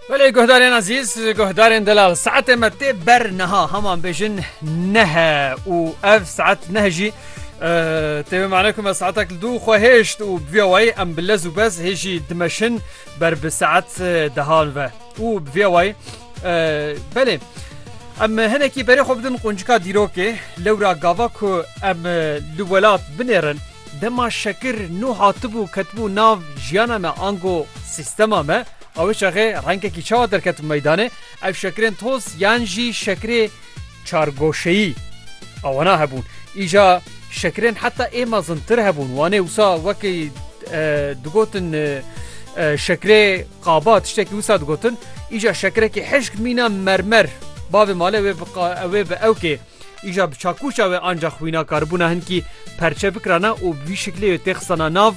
Belê guhdarên ezîz guhdarên delal saetê me tê ber niha heman bêjin nehe û ev saet nehe jî têwê mane ku me saetek li dû xwe hêşt û bi vê wayî em bi lez û bez hê jî dimeşin ber bi saet dehan ve û bi vê wayî belê em hinekî berê xwe bidin quncika dîrokê lewra gava ku em li welat binêrin Dema şekir nû hatibû ketibû nav jiyana me ango sîstema me, awê çaxê rengekî çawa derketibû meydanê, ev şekirên toz yan jî şekirê çargoşeyî a wana hebûn. Îja şekirên heta ê mezintir hebûn, wanê wisa wekî digotin şekirê qaba tiştekî wisa digotin, îja şekirekî hişk mîna mermer, bavê malê ew ê bi ewkê. Îja bi çakûşa we anca xwîna karibûna hinkî perçe bikirana û bi vî şiklê wê tê xisana nav.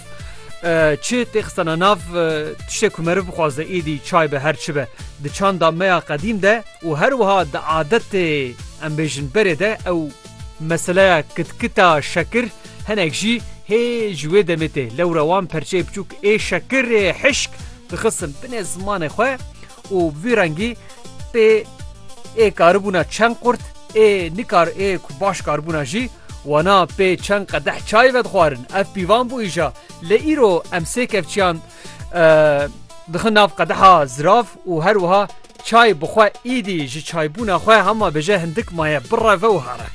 Çi tê xisana nav tiştê ku meriv bixwaze êdî çay be her çi be. Di çanda me ya qedîm de û her wiha di adetê em bêjin berê de ew meseleya kitkita şekir hinek jî hê ji wê demê tê. Lewre wan perçeyê biçûk ê şekirê hişk dixistin binê zimanê xwe û bi vî rengî pê ê karibûna çend qurt ê nikar ê ku baş karibûna jî wana pê çend qedeh çayê vedixwarin. Ev pîvan bû îja. Lê îro em sê kevçiyan dixin nav qedeha zirav û her wiha çay bi xwe îdî ji çaybûna xwe hema bêje hindik maye bireve û here.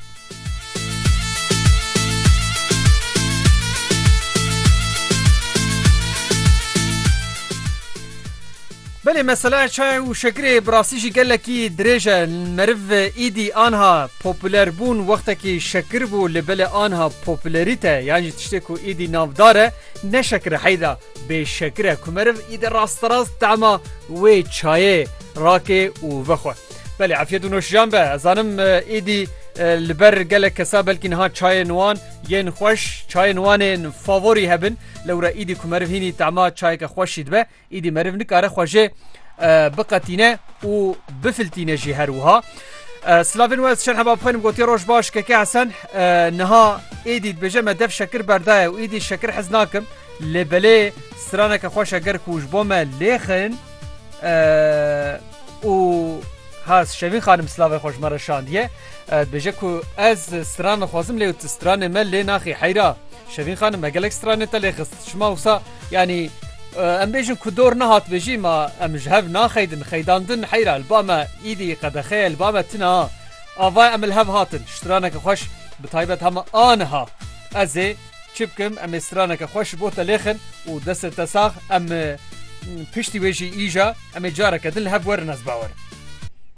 Belê mesela çay û şekirê bi rastî jî gelekî dirêj e. Meriv îdî anha popûler bûn wextekî şekir bû li belê anha popûlerîte yan jî tiştê ku îdî navdar e ne şekir e heyda bê şekir e ku meriv îdî rasterast tema wê çayê rake û vexwe. Belê efyet û noşijan be ez zanim êdî li ber gelek kesa belkî niha çayên wan yên xweş çayên wanên favorî hebin lewra êdî ku meriv hînî tema çayeke xweşî dibe êdî meriv nikare xwejê biqetîne û bifiltîne jî her wiha. Slavên wez şer heba bixwenim gotiye roj baş keke hesen niha êdî dibêje me dev şekir berdaye û êdî şekir hez nakim lê belê straneke xweş eger ku ji bo me lêxin û has şevî xanim silavê xweş me re şandiye dibêje ku ez stran dixwazim lê tu stranê me lê naxî heyra şevîn xanim me gelek stranê te lê xist şima wisa yanî em bêjin ku dor nehat bêjî ma em ji hev naxeydin xeydan din heyra li ba me îdî qedexeye li ba me tina ava em li hev hatin ji straneke xweş bi taybet hema aniha ez ê Çi bikim em ê straneke xweş ji bo te lêxin û destê te sax em piştî wê jî îja em ê careke din li hev werin ez bawer.